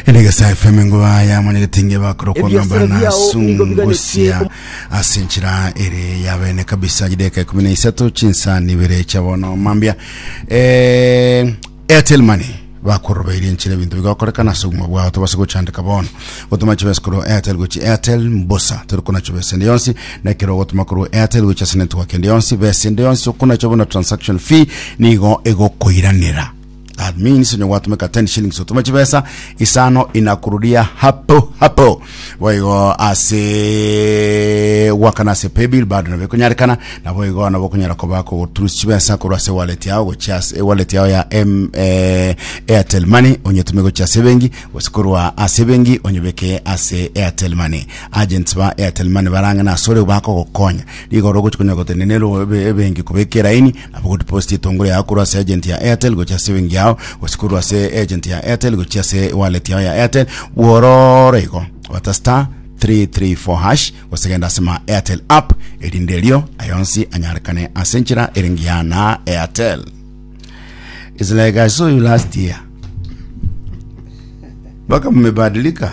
Enegesa FM nguba ya mwenyegete ngebakoro kwa Ebiasara ngamba na biao nigo sungusia biganetie ase enchera ere ya bene kabisa gideka ikumi na isato chinsa nibere cha bono mambia eh, Airtel Money bakorobeire enchera ebintu bigakorekana ase obogima bwao tobase gochandeka bono gotuma chibesa korwa Airtel gochi Airtel mbosa tori kona chibesa ende yonsi na ekero ogotuma korwa Airtel gochi ase network ende yonsi besa ende yonsi okona chabona transaction fee nigo egokoiranera That means onye gwatumeka 10 shillings otume chibesa isano inakurudia hapo hapo boigo ase gwakana ase paybill bado nabo ekonyarekana nabo igo nabo okonyara koba kogoturus chibesa korwa ase wallet yao gochia ase wallet yao ya M, eh, airtel money onyetume gochia ase bengi gose korwa ase bengi onyebeke ase airtel money agents ba airtel money barang'ana asore bakogokonya rigoro ogochia konya gotende nero ebe- ebengi kobeka eraini Aba good post etongore yao korwa ase agent ya Airtel gochia ase ebenki yao gose korwa ase agent ya Airtel gochia ase wallet yao ya Airtel bwororo igo bata star 334 hash gose genda ase ma Airtel app erinde erio ayonsi anyarekane ase enchera ere ngiya na Airtel It's like I saw you last year mpaka mmebadilika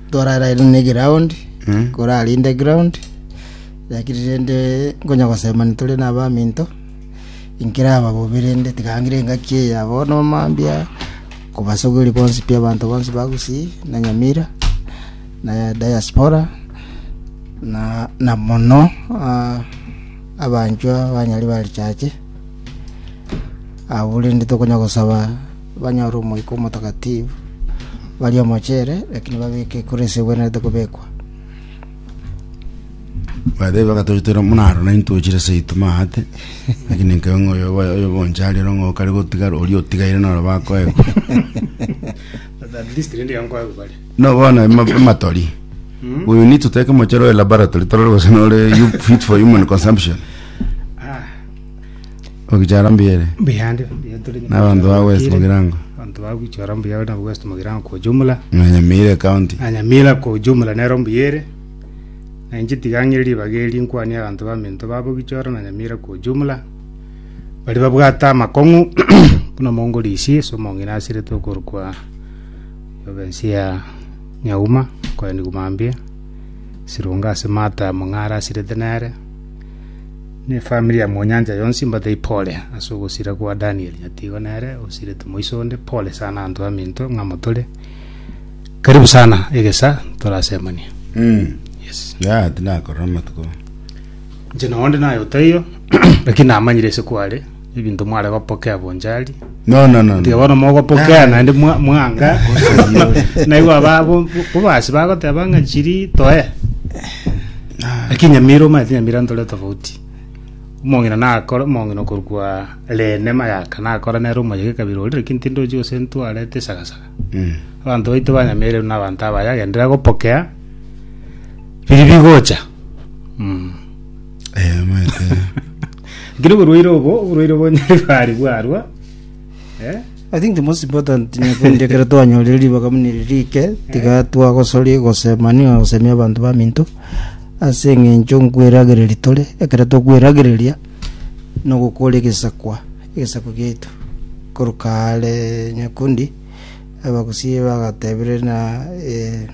Torarire ne ground, korarinde ground, lakini rende nkonya gosema nitore na abaminto, inkera aba bobe rende tigangire engaki eye ya bono mambia kobasogeri bonsi pi abanto bonsi ba Gusii na Nyamira na diaspora na na mono ah, abanchwa banyari ba richache abwo rende tokonya gosaba banyore Omoika Omotakatifu, barie omochere, lakini babeke ekura ase egwenerete kobekwa. Bagateba, Toitera buna aro, na intwe ochire ase aitwe maate, lakini nkaiga ng'a oyo obo- oyo obonche aria oro ng'a okare gotigara, oria otigaire noro bakoegwa. At least rende iga nkoegwa bare. No bono ema- ematori. We need to take mochere oye laboratory torore gose nore you- fit for human consumption. Ah, Ogichara mbuya ere. Mbuya ande, mbuya tore nyuma. N'abanto ba West Mugirango. Abanto ba gwichora mbuya na West Mugirango kwa ujumla. Na Nyamira County. Na Nyamira kwa ujumla nero mbuya ere. Na inche tiga ng'ire ribaga eri nkwanie abanto ba minto babo gichora na Nyamira kwa ujumla. Bari babwate amakong'u buna mongo rishi ase omong'ina asiretwe okorokwa province ya Nyauma, Koeni Gumambia, Sirunga ase Martha Mong'ara asirete nere. ne efamiri ya Mwanyancha yonsi mbatebie pole ase ogosira kwa Danieli. Nyatigo nere osiretwe moiso onde, pole sana anto aminto ng'a motore. Karibu sana egesa torasemanie. Mm. Yes. Ya, tinakorora amatuko. Inche noonde naye otaiyo, lakini namanyire ase kware. Ebinto mware gopokea bonchari. No, no, no. Tiga bono mogopokea naende mwa- mwanga. Naigwa aba bo- bo- bobasi bagoteba ng'a chiri toe. Lakini nyamira omanyete nyamira ntore tofauti. Omong'ina nakore omong'ina okorwa Rene Mayaka nakore nere omoyega ekabira oria lakini tindochi gose ntwarete esagasaga. Mm. Abanto baito ba Nyamira na abanto abaye agenderera gopokea biri bigocha. Mm. Eh, omanyete. Ngiri oborwaire obo, oborwaire obo nyaribari bwarwa. Eh? I think the most important nyakundi ekero twanyorire ribaga muna eri rike tiga twagosoria gosema niga gosemia abanto baminto ase eng'encho nkweragereria tore ekero tokweragereria nogokora egesakwa egesakwa giaitu koruka are nyakundi abagusii bagatebire na eh,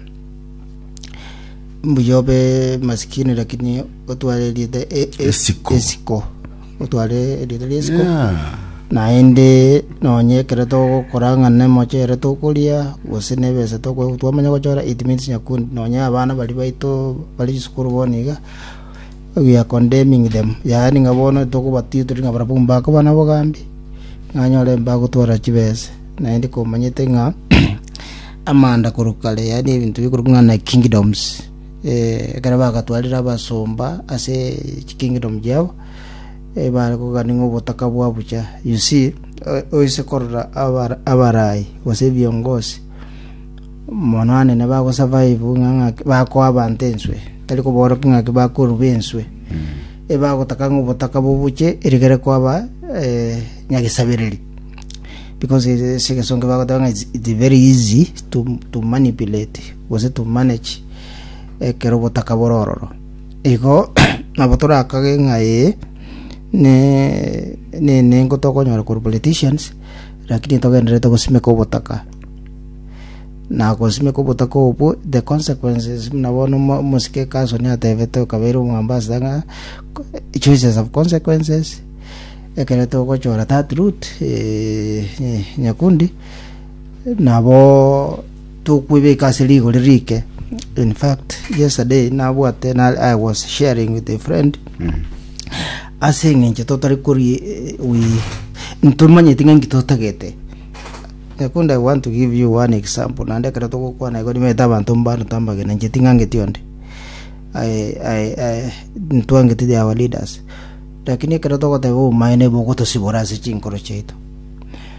mbuya obe masikini lakini otware erieta e- e- Esiko. esiko otware erieta riesiko Yeah. naende nonye ekero togokora ng'a nemochere tokoria gose nebesa toko- twamanya gochora it means nyakundi nonye abana baria baito bari chisukuru bono iga we are condemning them yaani ng'a bono tokobatia tiri ng'a barabwo mbako bana bogambi nanyore mbagotwara chibese naende komanyete ng'a amanda korwa kare yaani ebinto bikorokwa ng'a na kingdoms Ekero bagatwarire abasomba ase chikingdom chiabo, bare kogania ng'a obotaka bwa bucha. You see, oise korora abarai gose ebiongozi mono anene bagosurvive ng'a bakoa abanto enswe, tari koborwa ng'aki bakoruba enswe. Ebagotaka ng'a obotaka bobuche erigere kwaba nyagesabereri because ase egesongo bagoteba ng'a it's very easy to manipulate. gose tomanage ekero obotaka bore ororo. Igo nabo torakage ng'a ee, nenengo tokonyora korwa politicians, lakini togendererete gosimeka obotaka. Na gosimeka obotaka obwo, the consequences buna bono omosike Carson atebete o kabeire o Mombasa ng'a, choices have consequences, ekero togochora that route, nyakundi, nabo Tokwebeka ase rigori rike. In fact, yesterday nabwate na I was sharing with a friend ase eng'encho totari kori we ntomanyeti ng'a nki totagete. Nakundi I want to give you one example naende ekero togokwana igo nimanyete abanto mbare tambagenancheti ng'a ngeti onde. I, I, I, ntwangeti they are our leaders. Lakini ekero togoteba obomaene ibo ogotosibora ase chinkoro chiaito.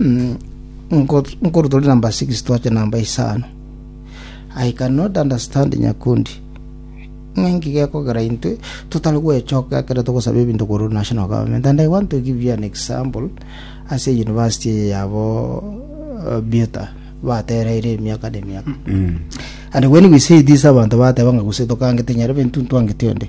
Mm, nko- nkorutori namba 6 twache namba isano i cannot understand nyakundi ng'enki gekogera intwe totari gwechoka ekero togosaba ebinto korwa ase national government and i want to give you an example ase university eye yabo uh, buta batereire emiaka na emiaka and when we say this abantu bateba ng'a gose tokangete nyarebe ntu ntwangete onde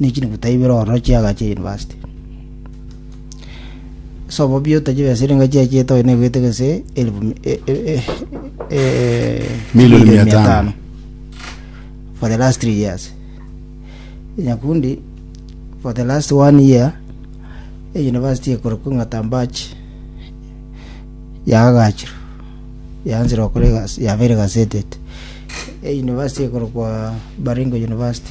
ne chinuguta ibere ororo chiaga chia university. Sobo biota chibe siringa chia chieta oyo negoete gese elfu mi- e- e- e- e- Milioni milioni mia mia tano. tano for the last three years nyakundi for the last one year e university ekorokwa ng'atambach yagagachirwa yaanzire okora egasi yabeire gasetet e university ekorokwa baringo university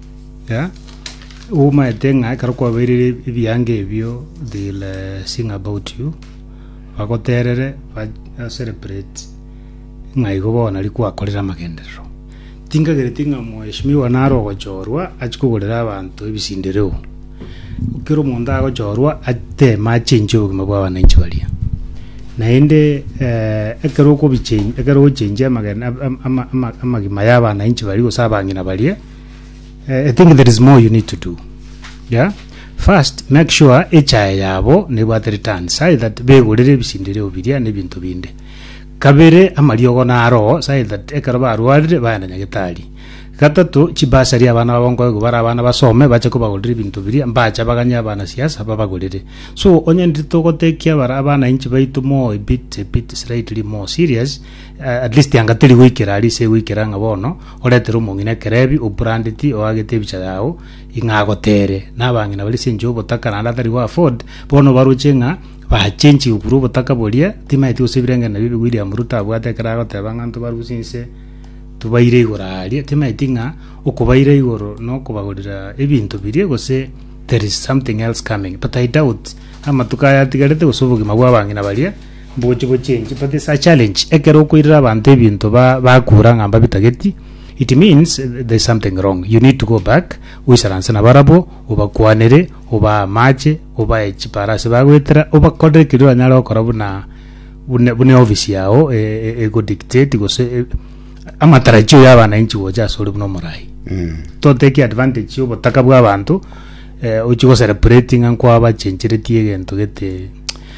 Yeah. Umaete ng'a ekero kwabeirire ebianga ebio they'll eh, sing about you bagoterere ba- ba celebrate ng'a igo bono nari kwakorire amagenderero tinkagereti ng'a mweshimiwa naro ogochorwa achi kogorera abanto ebisindereo kera omonto agochorwa ateme achenche obogima bwa abananchi baria naende eh, ekero okobichen- ekero ochenchia amagen- am- am- ama- amagima y'abananchi baria gose abang'ina baria Eh, I think there is more you need to do. Yeah? First, make sure echae yabo nebwate returns, aye that begorere ebisindireo biria na ebinto binde. Kabere, amariogo naro, aye that ekero barwarire baenda nyagetari. Gatato, chibasari abana babo nkoigwa bara abana basome, bache kobagorera ebinto biria, mbacha baganye abana siasa babagorere. So, onye ndiri togotekia bara abana inchi baito more a bit, a bit slightly more serious, Eh, at least anga teri goikera ari ase goikera ng'a bono oretere omong'ina ekerebi obrandeti oagete ebicha yao ing'a agotere na abang'ina bari ase enchera obotaka naende atari go afford bono baroche ng'a bachenchiwe korwa obotaka boria timaeti gose ebirengereri nabio bi William Ruto abwate ekero agoteba ng'a nto barusie inse tobaire igoro aria timaeti ng'a okobaira igoro na okobagorera ebinto biria gose there is something else coming but I doubt amatuko aya atigarete gose obogima bwa abang'ina baria Mbogochi bo change but it's a challenge ekero okoirera abanto ebinto ba bakura ng'a mbabitageti it means there's something wrong you need to go back oisaranse nabarabo obakwanere obaa amache obae chiparasi bagwetera obakorere keria oranyare gokora buna buna buna office yao e, e, ego dictate gose e, amatarajio ya abananchi gocha ase ore buna omorai Mm. toteki advantage ya obotaka bwa abanto eh, ochi gocelebrating ng'a nkwabachencheretie egento gete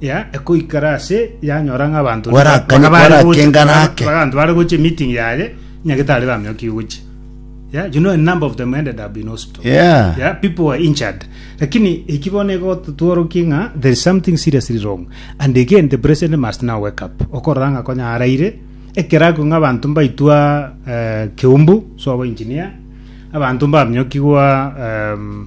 ya ekoikara ase yanyora ng'a abanto Baraka- baka bare barake gocha- ngara baka- ake. baka- abanto bare gocha meeting yaye nyagetari bamioki gocha yeah, you know a number of them ended up in hospital Yeah. yeah, people were injured lakini eki bono egototworoki ng'a there is something seriously wrong and again the president must now wake up okorora ng'a konya araire ekeraku ng'a abanto mbaitwa eh, keumbu so abo engineer abanto mbamyokigwa um,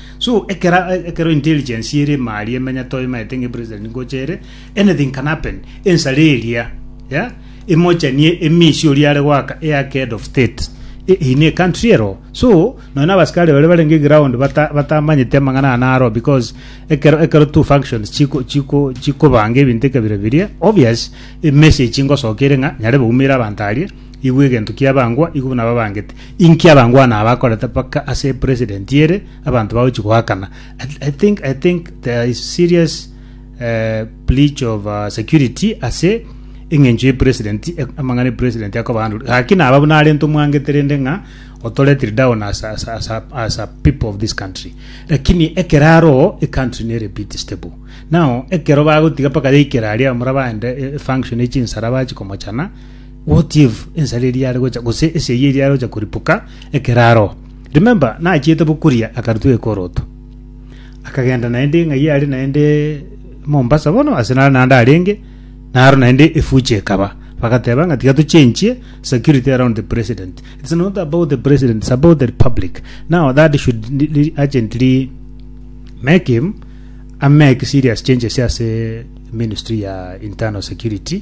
So ekero ekero intelligence ere mali emenya toimaete ng'e president ngocha ere anything can happen ensare eria ya emochanie emisi oria are goaka eyake head of state e- in a country ero so nonya na abasikari bare barenge ground bata batamanyete amang'ana aya naro because ekero ekero two functions chiko chiko chikobanga ebinto ekabira biria obvious emessage ngosoka ere ng'a nyare baumere abanto aria Igwe egento kiabangwa igwe buna babangete. Inki abangwana aba bakorete mpaka ase president ere abanto bagochi goakana. I, I think I think there is serious eh, breach of uh, security ase eng'encho ye president e- amang'ana e president akobahandure. Gaki naba buna arente omwangete rende ng'a otoretire down as, as, as, a- as a people of this country. Lakini ekero aro e country nere bit stable. Now ekero bagotiga mpaka yaikera aria mura baende e- e function echinsara bachi komochana What if ensara eria yare gocha gose esegi eria yare gocha koripuka ekero aroa? Remember, nachiete bokuria akarutwa ekoroto. Akagenda naende ng'ai are naende Mombasa bono ase nare naende arenge naro naende efuchi ekaba. Bagateba ng'a tiga tochenchie security around the president. It's not about the president, it's about the republic. Now that should li- li- urgently make him a make serious changes ase ministry ya internal security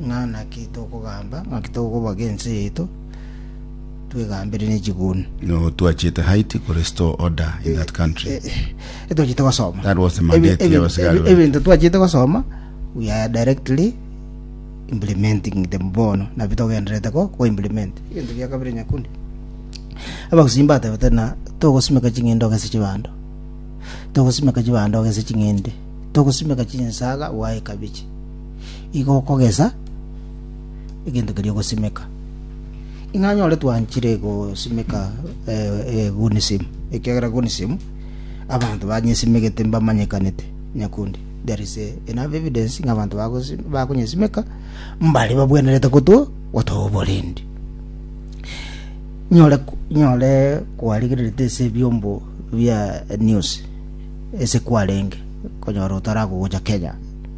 Ng'a naki tokogamba? Ng'aki tokoboga ense yaito twegambire ne chiguni? No, twachete Haiti ko restore order in that country. Eh, twachete gosoma That was the mandate Ebi- ya abasigari ebi- bane. ebinto twachete gosoma we are directly implementing them bono nabi togenderete ko ko implement ebinto bia kabere nyakundi abagusii mbatebete na togosimeka ching'ende ogese chibando togosimeka chibando ogese ching'ende togosimeka chinsaga waye kabichi igo okogesa egento keria ogosimeka. Ing'o anyore twanchire gosimeka egunism? Ekiagera egunism abanto banyesimegete mbamanyekanete nyakundi there is enough evidence ng'a abanto bakonyesimeka mbare babwenerete gotwo gotoa oborendi nyore nyore kwarigererete ase ebiombo bia news ase kwarenge konyora otaragogocha Kenya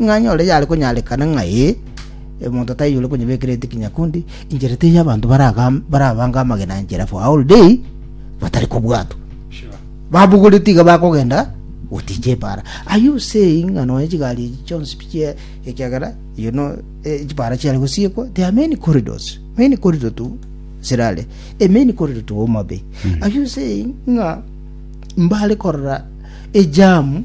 Ng'a nyore yare konyarekana ng'a ee, omonto taiyore konyebekera etukia nyakundi, inchera teiyo abanto baragam- barabange amagena a inchera for a whole day batari kobwatwa. Babogorete iga bakogenda goticha epaara. Are you saying ng'a nonya chigari echi chionsi pichia ekiagera you know eh, chipaara chiare gosiekwa? There are many corridors, many corridor to Sirare, a many corridor to Homa Bay. Are you saying ng'a mbare korora ejamu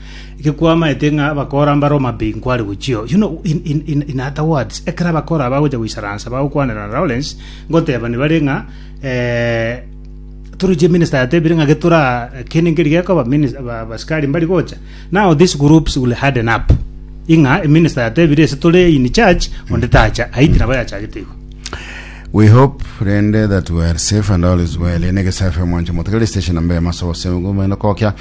Eke kwamaete ng'a abakora mbare omobe inkware gochio you know in, in, in, in other words ekero abakora bagocha goisaransa bagokwanera na Lawrence ngotebani bare ng'a eh, toroche minister yatebire ng'a getora kene nkeri gekoba minis- ba- basikari mbari gocha now these groups will harden up ing'a minister yatebire ase tore in church onde tacha aiti nabo yachagete igo We hope rende that we are safe and all is well. Ene gesafe mwanche motegere station ambe maso sengumene kokya.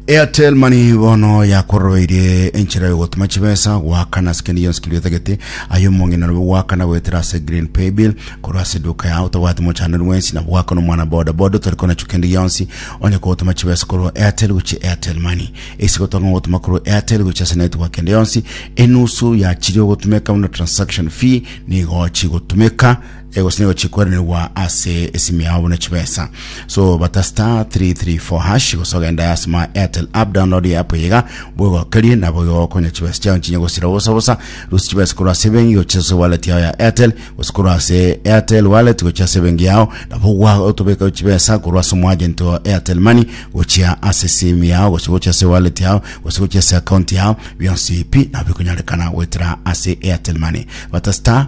Airtel Money bono yakororobeire enchera yogotuma chibesa goakana ase kende gionsi keria otagete aye omong'ina nobe goakana goetera ase green pay bill korwa ase duka yao otobwati mochandani bwensi na goakana omwana boda boda otari konachu kende gionsi onye kogotuma chibesa korwa airtel gochi airtel money esi gotanga gotuma korwa airtel gochi ase network kende yonsi enusu ya chiria ogotumeka buna transaction fee nigo chigotumeka egose nigo chikweranirwa ase esimu yao buna chibesa so bata star 334 hash gose ogenda ase ma airtel app download ya app yiga bwegokerie nabo igokonya chibesa chao nchinya gosira bosa bosa rusi chibesa korwa ase bengi gochia ase wallet yao ya airtel gose korwa ase airtel wallet gochia ase bengi yao nabo gwa otobeka chibesa korwa ase omwagent wa airtel money gochia ase simu yao gose gochia ase wallet yao gose gochia ase account yao bionsi pi nabo bikonyarekana goetera ase airtel money bata star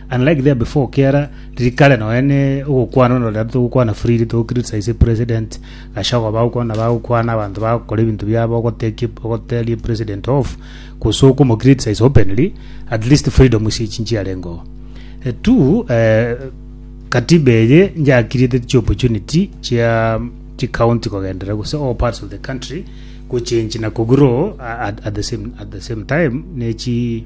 Unlike there before kiara riri kare nonya ne ogokwana onde onde togokwana freely to criticize president gashogo bagokwana bagokwana abanto bagokora ebinto biabo ogotekia ogoteria president off gose okomo criticize openly at least freedom ase echi nchiarengeo Eh, two eh, katiba eye njakiriete chi opportunity chia chi county kogendera gose all parts of the country gochange na kogrow at, at, the same, at the same time ne chi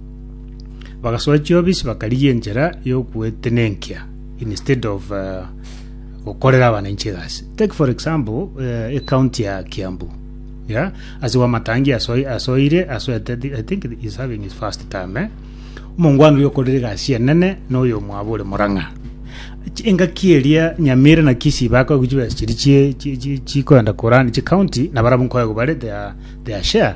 Bagasoa chiobisi bakarigia enchera y'ogoetenenkia instead of eh, gokorera abananchi egasi. Take for example eh, ecounty ya Kiambu. Yeah? Ase Wamatangi asoi- asoire asoete thi- I think he's having his first term eh? Omongwana oria okorire egasi enene na oyo omwabo ore Murang'a. Chi- engaki eria Nyamira na Kisii baka gochiba chiri chie- chi- chi- chikoenda korani chi county na barabwo nkoya gobare their, their share